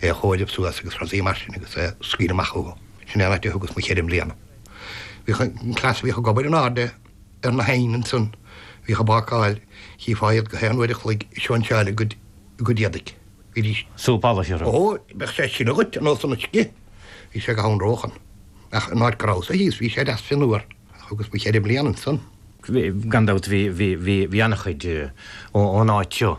é a chomhaireamh suas agus frásaí mar sin agus é scaoileadh amach chucu. Sin é an áit a thugas mo cheithre mbliana. Bhíodh an cleas a bhíodh ag obair in airde ar na hoighin ansan, bhíodh á bhácáil, chífeá iad gach aon uair a chloig ag sóinseáil a gcuid éadaigh. Bhídís. Súp alla thirim. Ó, beadh sé ag sileadh dhuit ar nós an uisce. Bhí sé go hanróch ann. Ach an áit go rabhas-sa thíos, bhí sé deas fionnuar. Ach thugas mo cheithre bliana ansan. Gan dabht bhí an-chuid ón áit seo.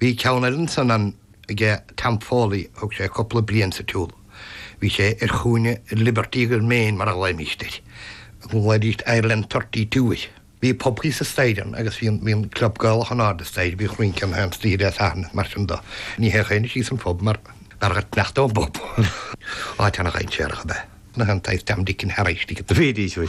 Bhí ceann eile ansan ann aige Tom Foley, thug sé cúpla bliain sa tsiúl. Bhí sé ar chúinne Liberty agus Main mar a ghlaoimíst air, glaoidíst Ireland Thirty Two air. Bhí pub thíos an staighre ann agus bhí an, bhí an club Gaelach in airde an staighre, bhí rince in airde staighre Dé Sathairn is mar sin do. Ní théadh éinne síos an phub mar ná raghaidís in aice an phub. Áit ana dhainséarach ab ea na an taobh Tom Dick and Harry istigh. Bhídís, bhí.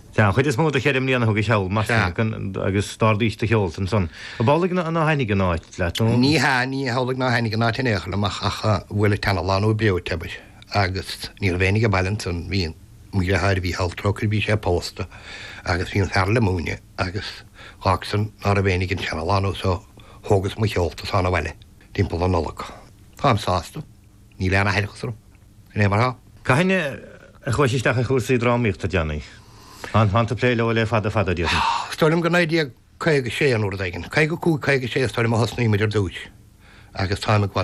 Sea, an chuid is mó de cheithre mbliana thugais thall, mar sin, agus d'ardaís do sheolta ansan. Ab amhlaidh nár thaitin an áit leat, nó? Ní hea, ní hamhlaidh nár thaitin an áit in aon chor liom, ach bhuail an tseanalánú breoite, abair, agus ní raibh éinne ag baile ansan. Bhí mo dhriotháir, Mícheál, trócaire air, bhí sé pósta, agus bhí an fear eile ag múineadh, agus dh'fhág san ná raibh éinne ag an seanalánú, so thógas mo sheolta ansan abhaile, timpeall na Nollag. Táim sásta. Níl aon aithreachas orm. Sin é mar tá. Cathain a chuais isteach i gcúrsaí drámaíochta a Danny? An fada ataoi ag plé leo? Le fada fada, déarfainn. Is dóigh liom gur 1956 nó uair éigin, 55, 56 is dóigh liom a thosnaíomar ar dtúis agus táim ag